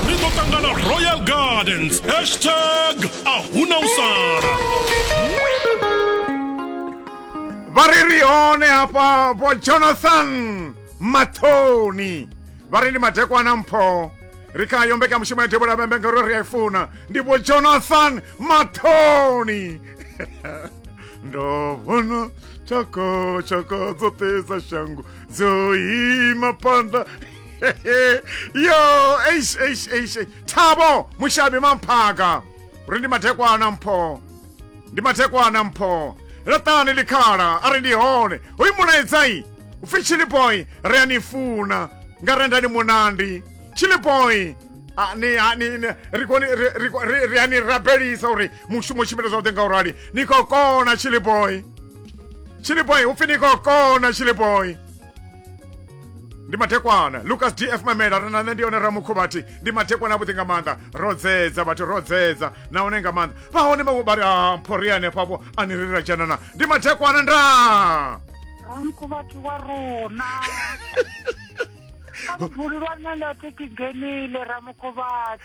ri ḓo ṱangana royal gardens hashtag a huna u sala vha ri ri hone hafha vho jonathan mathoni vha ri ndi madekwana mpho ri kha yo mbekanyamushumo ya devhula vhembe ngauri ri a i funa ndi vho jonathan mathoni ndo vhona tshoko tshoko dzoṱhe dza shango dzo ima phanḓa yo eish eish eish eish. thabo mushabi mamphaka uri ndi mathekwana mpho ndi mathekwana mpho laṱani ḽikhala a ri ndi hone hoyu mulaedzai upfi chiliboy ri a ni funa nga renda ni munandi chiliboy a- ni- a- ni- ni- ri koni- ri- ri- ri- ri a ni rabelisa uri mushumo tshimbile zwavhuḓi nga u rali ni khou kona chiliboy chiliboy upfi ni khou kona chiliboy ndi mathekwana lucas df mamela ri na nṋe ndi yone ramukhuvhathi ndi mathekwana avhuḓi nga maanḓa ro dzedza vhathu ro dzedza nahone nga maanḓa vha hone vhawe vha ri a mphori hanefhafho a ni rira dzhanana ndi mathekwana nda ramkhuvhathi wa rona a vhululwa nṋe nda thi kigenile ramkhuvhathi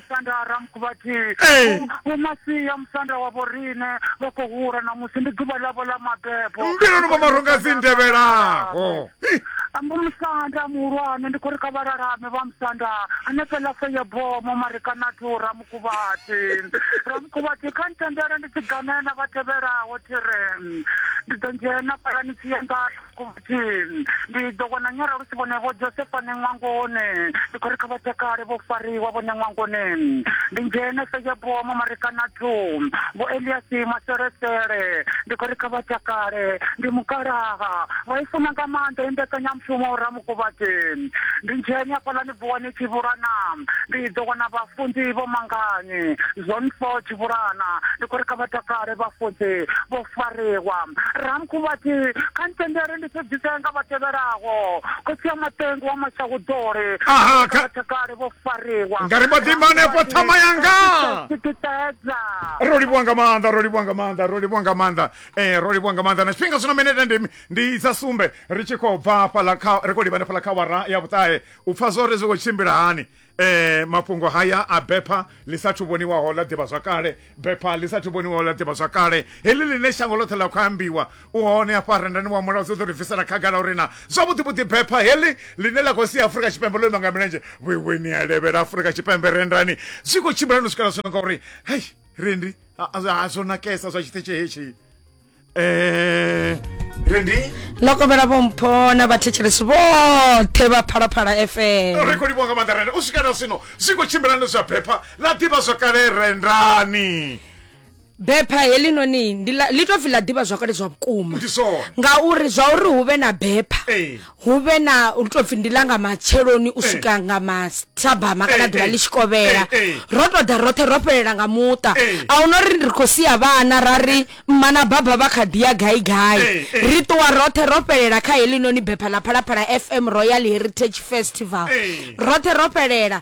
musanda a ramku vhathihi Ee. Vho- vho masia musanda wa vho riṋe vha khou hula ṋamusi ndi ḓuvha ḽavho ḽa mabebo mbiluni mwa maronga dzi ndevhelaho Hi, ambo musanda muhulwane ndi khou ri kha vhalalame vha musanda hanefheḽa fe ya bomo marikanathu ramukuvhati ramukuvhati kha ntendele ndi tshi ganela vha tevhelaho thire ndi ḓo ndzhena palanisi yanga ndi ḓo vhona nyara lu si vhone vho josefa ne ṅwangoni ndi khou ri kha vha takale vho fariwa vhone ṅwangoni ndi ndzhene sejeboa mamarekanatu vho eliasi maselesele ndi khou ri kha vha takale ndi mukalaha vha i funa nga maanḓa i mbekanyamushumo ramukovhati ndi ndzhene afhaḽani Vuwani Tshivhulana, Ndi ḓo wana vhafunzi vho mangani? Zone Four Tshivhulana, Ndi khou ri kha vha takale vhafunzi vho fariwa. Ramkhu vha tshi, Kha ni tendele ndi sudzisee nga vha tevhelaho, Khotsi ya Maṱengu wa Mashahuḓoli, Ndi khou ri kha vha takale vho fariwa. Nga ri mbo ḓi ima hanefho ṱhama yanga. Ro livhuwa nga maanḓa, ro livhuwa nga maanḓa, ro livhuwa nga maanḓa, ro livhuwa nga maanḓa na tshifhinga zwino minete ndi. Ndi dza sumbe ri tshi khou bva hafhaḽa kha, ri khou livhana fhaḽa kha awara ya vhuṱahe u pfa zwa uri zwi khou tshimbila hani mafhungo haya a bepha ḽi sa thu vhoniwaho ḽa ḓivhazwakale. Bepha ḽi sa thu vhoniwaho ḽa ḓivhazwakale, heḽi ḽine shango ḽoṱhe ḽa khou ambiwa, u hone hafha rendani wa Mulaudzi u ḓo ri bvisela khagala uri naa zwavhuḓi-vhuḓi bepha heḽi ḽine ḽa khou sia Afurika Tshipembe ḽo ima nga milenzhe vhuiweni ha levhela Afurika Tshipembe rendani zwi khou tshimbila hani u swikela zwino ngauri hei rendi, zwo nakesa zwa tshiṱitshi hetshi. eh rendi ndo kombela vhompho na vhathetshelesi vhoṱhe vha phalaphala fm ri khou livhuwa nga maanḓa renda u swika na zwino zwi khou tshimbilani zwa bepha ḽa ḓivha zwakale rendani bepha helinoni ndi ḽa- ḽi tou pfi ḽa ḓivha zwakale zwa vhukuma ndi zwone ngauri zwa uri hu vhe na bepha Ee. hu vhe na lu tou pfi ndi ḽa nga matsheloni u swika nga mathabama kana Eh, ḓuvha eh. ḽi tshi kovhela Eh, eh. ro tou ḓa roṱhe ro fhelela nga muṱa Eh. a huna uri ri khou sia vhana ra ri mma na baba vha kha ḓi ya gai gai Eh, eh. ri ṱuwa roṱhe ro fhelela kha heḽi noni bepha ḽa phalaphala fm royal heritage festival Eh. roṱhe ro fhelela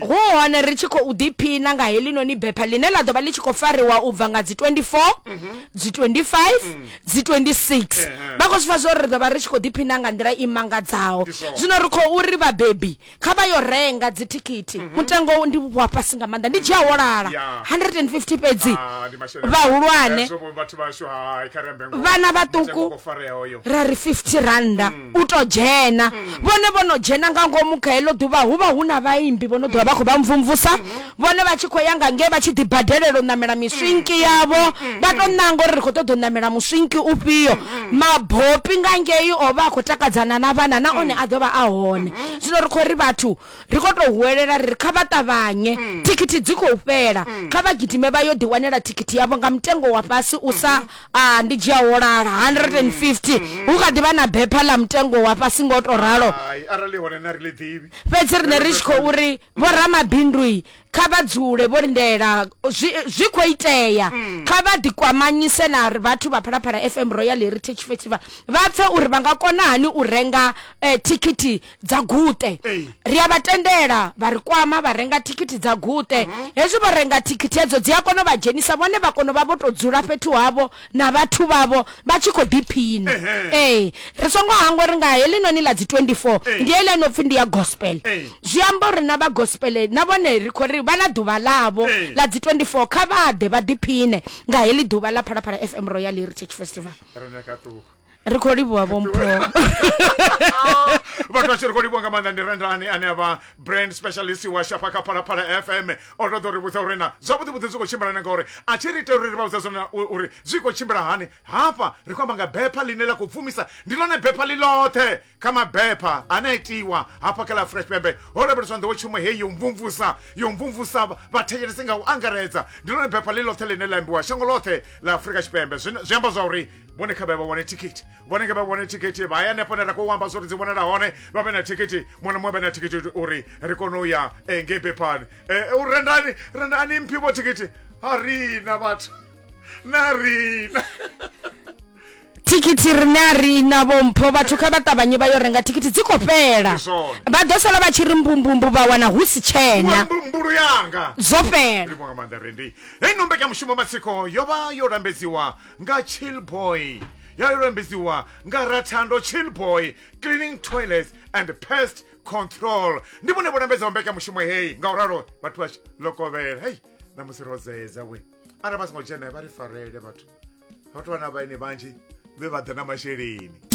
hu hone ri tshi khou ḓiphina nga helinoni bepha ḽine ḽa ḓo vha ḽi tshi khou fariwa u bva nga dzi 24 mhm. dzi 25 mm. dzi 26 vha khou zwi pfa zwo ri ḓo vha ri tshi khou ḓiphina nga nḓila i mangadzaho zwino ri khou uri vhabebi kha vha yo renga dzithikhithi mhm. mutengo ndi wa fhasi nga maanḓa ndi dzhia holala 150 fhedzi ah, vhahulwane vhana vhaṱuku ra ri 50 randa mm. u to dzhena vhone vho no dzhena nga ngomu kha heḽo ḓuvha hu vha hu na vhaimbi vho no ḓovha vha khou vha mvumvusa vhone vha tshi khou ya nga ngei vha tshi ḓi badelela u ṋamela miswinki yavho vha to ṋanga uri ri khou ṱoḓa u ṋamela muswinki ufhio mabopi nga ngei o vha a khou takadzana na vhana na one a ḓo vha a hone zwino ri khou ri vhathu ri khou tou huwelela ri ri kha vha ṱavhanye thikhithi dzi khou fhela kha vha gidime vha yo ḓiwanela thikhithi yavho nga mutengo wa fhasi u sa a ndi dzhia holala 150 mm-hmm. hu kha ḓivha na bepha ḽa mutengo wa fhasi ngo to ralo arali hone na ri ḽi ḓivhi fhedzi rine ri tshi khou ri vho ramabindui kha vha dzule vho lindela zwi khou itea mm. kha vha ḓikwamanyise na vhathu vha phalaphala fm royal heritage festival vha pfe uri vha nga kona hani u renga eh, thikhithi dza guṱe ri a vha tendela vha ri kwama vha renga thikhithi dza guṱe mhm. hezwi vho renga thikhithi hedzo dzi a kona u vha dzhenisa vhone vha kona u vha vho tou dzula fhethu havho na vhathu vhavho vha tshi khou ḓiphina ee ri songo hangwa ri nga helinoni ḽa dzi 24 ndi heḽi no pfhi ndi ya gospel zwi amba uri na vha gospel na vhone ri khou ri vha na ḓuvha ḽavho ḽa dzi 24 kha vha ḓe vha ḓiphine nga heḽi ḓuvha ḽa phalaphala fm royal heritage festival ri khou livhuwa vhompho vhathu vha tshi ri khou livhuwa nga maanḓa ndi rendani ane a vha brand specialist wa shafha kha phalaphala fm o ṱoḓa uri vhudza uri na zwavhuḓivhuḓi zwi khou tshimbilana ngauri a tshi ri itela uri ri vha vhudza zwone uri zwi khou tshimbila hani hafha ri khou amba nga bepha ḽine ḽa khou pfumisa ndi ḽone bepha ḽi ḽoṱhe kha mabepha ane a itiwa hafha kha ḽa afurika tshipembe ho lavheleswa nḓowetshumo heyi yo mvumvusa yo mvumvusa vhathetshelesi nga u angaredza ndi lone bepha ḽi ḽoṱhe ḽine ḽa ambiwa shango ḽoṱhe ḽa afurika tshipembe zwi amba zwa uri vhone kha vhe vha wane thikhithi vhone kha vha wane thikhithi vha ya hanefho ne ra khou amba zwori dzi vhonala hone vha vhe na thikhithi muṅwe na muṅwe vhe na thikhithi uri ri kone u ya eh, ngei bephani eh, u rendani rendani mphi vho thikhithi ha rina vhathu na rina thikhithi rine a ri na vhompho vhathu kha vha ṱavhanye vha yo renga thikhithi dzi khou fhela Ndi zwone. vha ḓo sala vha tshi ri mbumbumbu vha wana hu si tshena mbumbulu yanga zwo fhela livho nga maanḓa rendi heino mbekanyamushumo matsiko yo vha yo lambedziwa nga chillboy ya yo lambedziwa nga rathando chillboy cleaning toilets and pest control ndi vhone vho lambedzaho mbekanyamushumo heyi nga u ralo vhathu vha tshi lokovhela hei ṋamusi ro zeza we arali vha songo dzhena vha ri farele vhathu vhathu vhana vhaine vhanzhi vhe vha ḓa na masheleni